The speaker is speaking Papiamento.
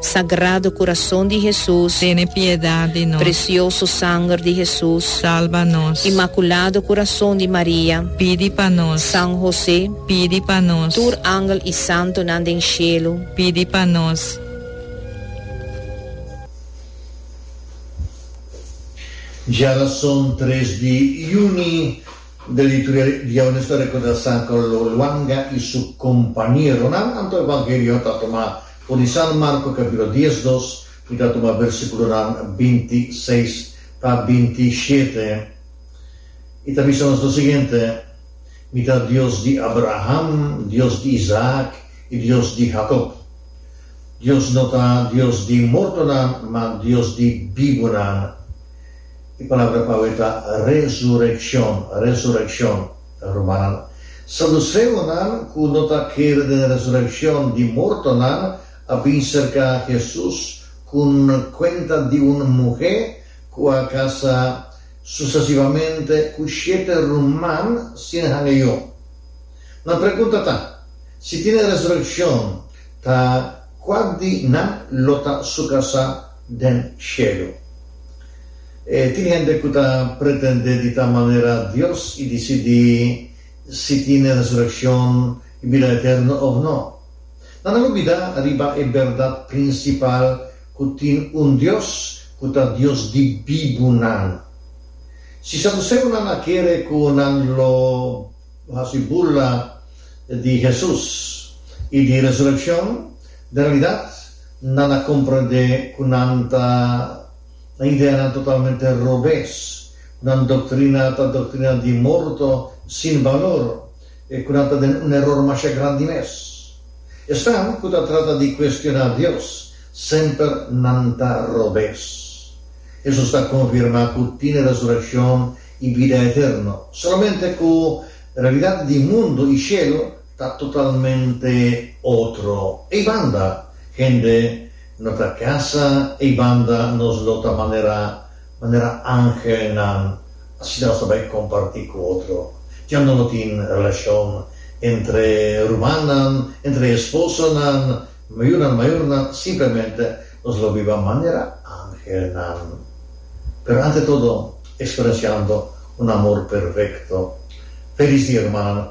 Sagrado Kurason di Hesus. Tene piedad di nos. Presioso Sanger di Hesus. Salba nos. Imakulado Kurason di Maria. Pidi pa nos. San Hosé. Pidi pa nos. Tur angel i santunan den shelu. Pidi pa nos. Djara son tres di juni, de lituria diaunes ta recorda San Carlo Luanga y su compañeronan, anto e vangelio ta tuma. Pone San Marco capitulo dies dos y ta tuma versiculonan binti seis ta binti shete y ta bisa nos lo siguiente, Mi ta Dios di Abraham, Dios di Isaac y Dios di Jacob. Dios no ta Dios di mortonan, ma Dios di bibunan. E palabra pawe ta resureccion, resureccion. Rumannan, saduseonan ku no ta kere den resurekshon di mortonan a bin serká Hesus ku un kuenta di un muhé ku a kasá susesivamente ku shete ruman sin hanga yu. Nan pregunta ta, Si tin e resurekshon, ta kua di nan lo ta su kasá? den shelu. E tin hende ku ta pretendé di ta manera Dios i disidí si tin e resurekshon i bida eterno òf nò. Nan a olbidá riba e bèrdat prinsipal ku tin un Dios ku ta Dios di bibunan. Si saduseonan a kere ku nan lo hasi burla di Hesus i di resurekshon, den realidat, Nan a comprende cu nan ta, nan ideanan totalmente robes, cu nan doctrina ta doctrina di morto, sin balor, e cu nan ta den un eror masha grandi mes. Esnan cu ta trata di cuestiona Dios, semper nan ta robes. Hesus ta confirma cu tin resurreccion y bida eterno, solamente cu realidad di mundo y cielo ta totalmente otro. Ei banda hende no ta kasa, ei banda nos lo ta manera manera angelnan, asina nos ta bai kompartí ku otro. Ya no lo tin relashon entre rumannan, entre esposonan, mayunan, mayornan, simplemente nos lo biba manera angelnan. Pero ante todo eksperensiando un amor perfekto. Felis dia rumannan.